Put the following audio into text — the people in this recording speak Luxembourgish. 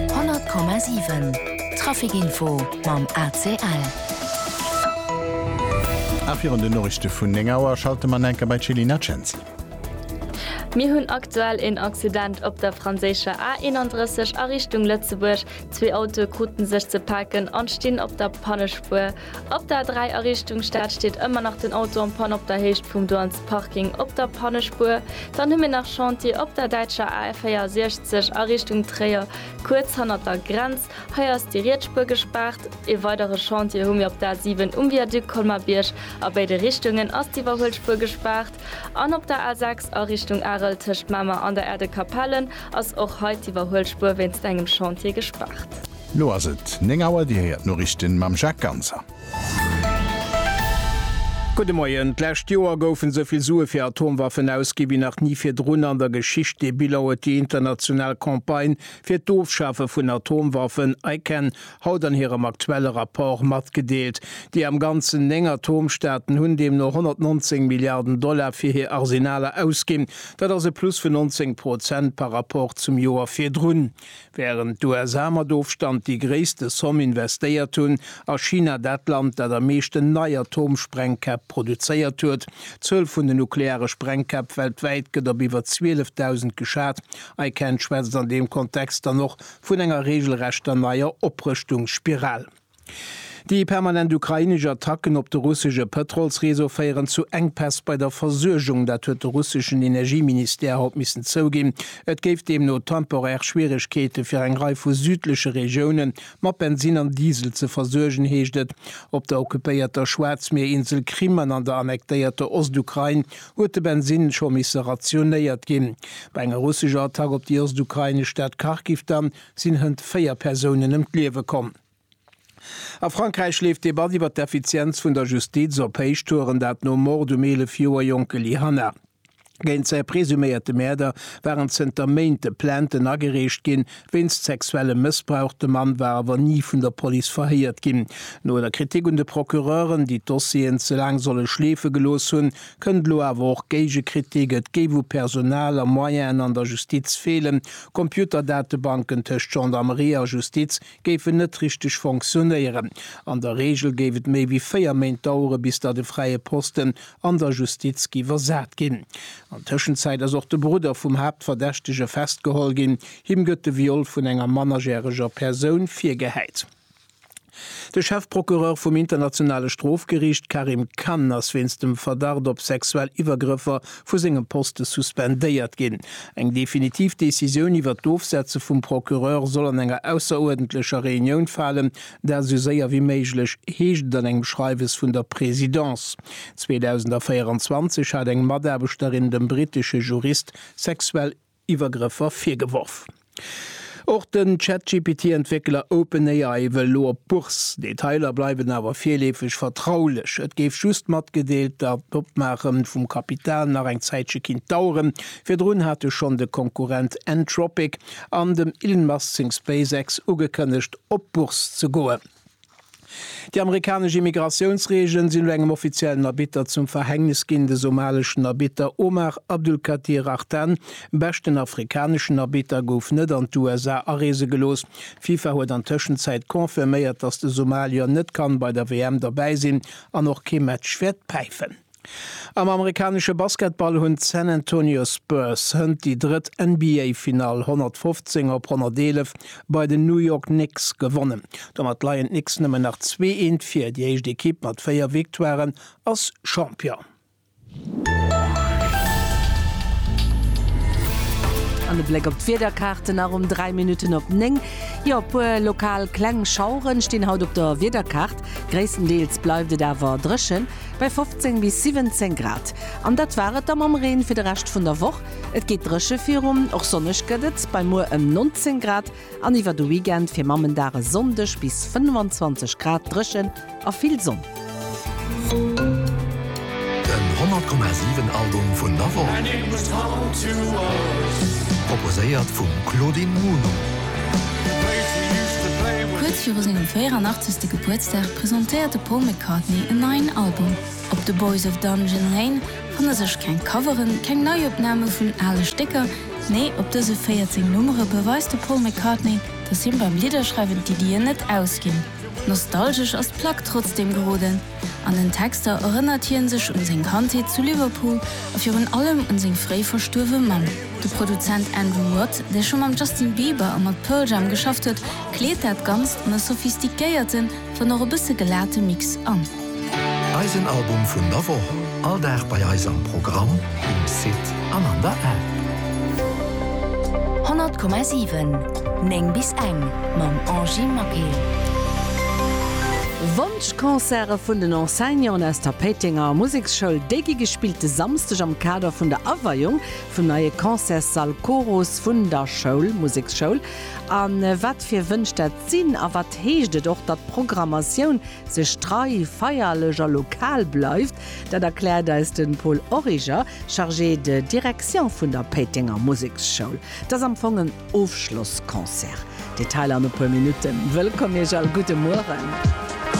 100,7 Traficinfo mam ACL. A virun den Noriichte vun 9 Auer schalte mer enker bei d'Jelina Cenzi. Mir hunn aktuell een Accident op der franséischer A 31 a Richtung Lëtzebuerg. Zwee Autoe krute sech ze paken an stinn op der Pannespuer. Op der 3 a Richtung Stad steet ëmmer nach den Auto en panne op der Héicht vum Douanes Parking op der Pannespuer. Dann hu mir nach Chantier op der däitscher A 64 a Richtung Tréier, kuerz hannert der Grenz. Hei ass déi riets Spuer gespaart. Ee weidere Chantier hu mir op der A 7 um Viaduc Colmar-Bierg. A béide Richtungen ass d'Iwwerhuelspuer gespaart. An op der A 6 a Richtung Arel tëscht Mamer an der Aire de Capellen ass och hei d'Iwwerhuelspuer wéinst engem Chantier gespaart. Lo ass et 9 Auer, Dir héiert d'Noriichten mam Jacques Ganser. Gudde Moien. D'lescht Joer goufen esou vill Sue fir Atomwaffen ausgi wéi nach ni virdrun an der Geschicht. Dee Bilan huet déi international Campagne fir d'Ofschafe vun Atomwaffen, ICAN, haut an hirem aktuelle Rapport matgedeelt. Déi am Ganzen 9 Atomstaaten hunn deemno 119 Milliarden Dollar fir hir Arsenaler ausginn. Dat ass e Plus vun 19 Prozent par Rapport zum Joer virdrun. Wärend d'USA mat Ofstand déi gréisste Somm investéiert hunn, ass China dat Land, dat am meeschten nei Atomsprengkäpp produzéiert huet. D'Zuel vun den nukleare Sprengkäpp weltwäit gëtt op iwwer 12.000 geschat. ICAN schwätzt an deem Kontext dann och vun enger reegelrechter neier Oprëschtungsspiral. Déi permanent ukrainesch Attacken op de russesche Pëtrolsreseau féieren zu Enkpäss bei der Versuergung. Dat huet de russeschen Energieministère haut missen zouginn. Et géif deemno temporär Schwieregkeete fir eng Rei vu südleche Regioune mat Bensinn an Diesel ze versuergen, heescht et. Op der occupéierter Schwaarzmierinsel Krim an an der annektéierter Ostukrain huet de Bensinn scho misse rationéiert ginn. Bei enger russescher Attack op déi ostukrainesch Stad Kharkiv dann, sinn hënt 4 Persounen ëm d'Liewe komm. A Frankräich leeft d'Debatt iwwer d'Effizienz vun der Justiz op Héichtouren, dat nom Mord um 11 Joer jonke Lee Hanna. Géint säi presuméierte Mäerder waren zënter Méinte Plainten agereecht ginn, wéinst sexuellem Mëssbrauch. De Mann war awer ni vun der Police verhéiert ginn. No der Kritik un de Procureuren, déi d'Dossieren ze laang solle schleefe gelooss hunn, Kënnt elo awer och Géigekritik, et géif u Personal a Moyenen an der Justiz feelen, Computerdatebanken tëscht Gendarmerie a Justiz géifen net richteg fonctionnéieren. An der Reegel géif et méi wéi 4 Méint dauere bis datt e fräie Posten an der Justiz gi versat ginn. An Tëschenzäit ass och de Brudder vum Haaptverdächtege festgeholl ginn. Him gëtt de Viol vun enger mannerjäreger Persoun virgehäit. De Chefprocureur vum Internationale Strofgeriicht Karim Khan ass wéinst dem Verdacht op sexuell Iwwergrëffer vu sengem Poste suspendéiert ginn. Eng definitiv Decisioun iwwert d'Ofsetze vum Procureur soll an enger ausseruerdentlecher Reunioun falen, dat esou séier wéi méiglech, heescht et an engem Schreiwes vun der Presidence. 2024 hat eng Mataarbechterin dem brittesche Jurist sexuell. Iwwergrëffer virgeworf. Och den ChatGPT-Entwéckeler OpenAI wëll elo op d'Bourse. Detailer bleiwen awer virleefeg vertraulech. Et géif just matgedeelt, datt d'Opmaache vum Kapital nach eng Zäitche kinnt daueren. Virdrun hate schonn de Konkurrent Anthropic an dem Elon Musk seng SpaceX ugekënnegt, op d'Bourse ze goen. Déi amerikanesch Immigratiounsreegelen sinn elo engem offiziellen Arbitter zum Verhängnis ginn. De somaleschen Arbitter Omar Abdulkadir Artan, beschten afrikaneschen Arbitter, gouf net an d'USA areese gelooss. D'FIFA huet an Tëschenzäit confirméiert, datt de Somalier net kann bei der WM derbäi sinn an och kee Match wäert päifen. Am amerikanesche Basketball hunn d'San Antonio Spurs hënt déi drëtt NBA-Finall 115 op 111 bei den New York Knicks gewonnen. Domat leien d'Knicks nëmmen nach zwee Eent vir, déi éischt Ekipp mat véier Victoiren ass Champion. An e Bléck op d'Wiederkaarte nach um 3 Minutten op 9. Jo, e puer lokal kleng Schauere stinn haut op der Wiederkaart, gréisstendeels bleift et awer dréchen. bei 15 bis 17 Grad. An dat war et da mam Reen fir de Rescht vun der Woch. Et geet dréche virun, och sonneg gëtt et bei muer ëm 19 Grad an iwwer de Weekend fir Mammendag e Sonndeg bis 25 Grad dréchen a vill Sonn. Den 100,7 Album vun der Woch proposéiert vum Claudine Muno. Kuerz viru sengem 84. Gebuertsdag presentéiert de Paul McCartney en neien Album. Op The Boys of Dungeon Lane fanne sech keng Coveren, keng Neiopname vun ale Stécker, nee op dëse 14 Nummere beweist de Paul McCartney, datt him beim Lidderschreiwen d'Iddien net ausginn. Nostalgesch ass d'Plack trotzdeem geroden. An den Texter erënnert hie sech un seng Kandheet zu Liverpool a virun allem un seng fréi verstuerwe Mamm. De Produzent Andrew Watt, dee scho mam Justin Bieber a mat Pearl Jam geschafft huet, kleet dat Ganzt an e sophistiquéierten, wann och e bësse gelate Mix an. Eisen Album vun der Woch, all Dag bei eis am Programm, um Site an an der App. 100,7 9 bis eng mam Angy Maquet. D'Concerte vun den Enseignanten aus der Péitenger Museksschoul, déi gi gespillt de Samsdeg am Kader vun der Aweiung vum neie Concertssall Chorus vun der Schoul, Museksschoul. A wat fir Wënsch dat sinn a wat heescht et och, datt d'Programmatioun sech trei, feierlech a lokal bleift, dat erkläert eis de Paul Origer, Chargé de direction vun der Péitenger Museksschoul. Et ass am Fong en Ofschlossconcert. Detailer an e puer Minutten. Wëllkomm Iech all, gudde Mueren.